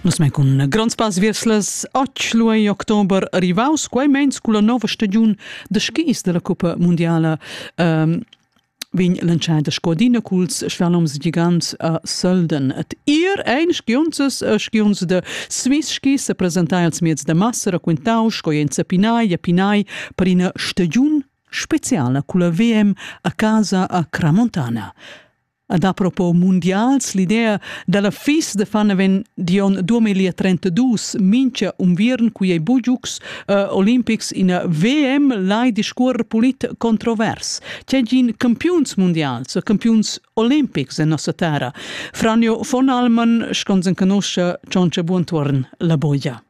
Nus men cun gronds pass viers las 8 october rivaus, quai meins culla nova stagiun da skis della Cuppa Mundiala. Um, vegn lanciada scodina culs schwaloms gigants a Sölden. Et ir ein skiunzes e skiunzes de Swiss skis se presentai als mieds de massa raquintau sco en Zapinai e Pinai per ina stagiun speciala culla VM a casa a Cramontana. Ad apropos mundials, l'idea dalla fis de Faneven Dion 2032 mincha unviern qui ei bugiux uh, Olympics in VM lai discuor polit controvers. C'è gin campiuns mundials, campiuns olimpics en nossa terra. Franjo von Alman, schons en canoscia, Cionce buontorn la boia.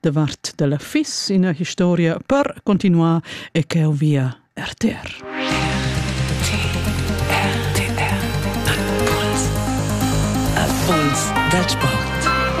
davart della fis ina historia per continuar e cheu via RTR. RTR. Impuls da sport.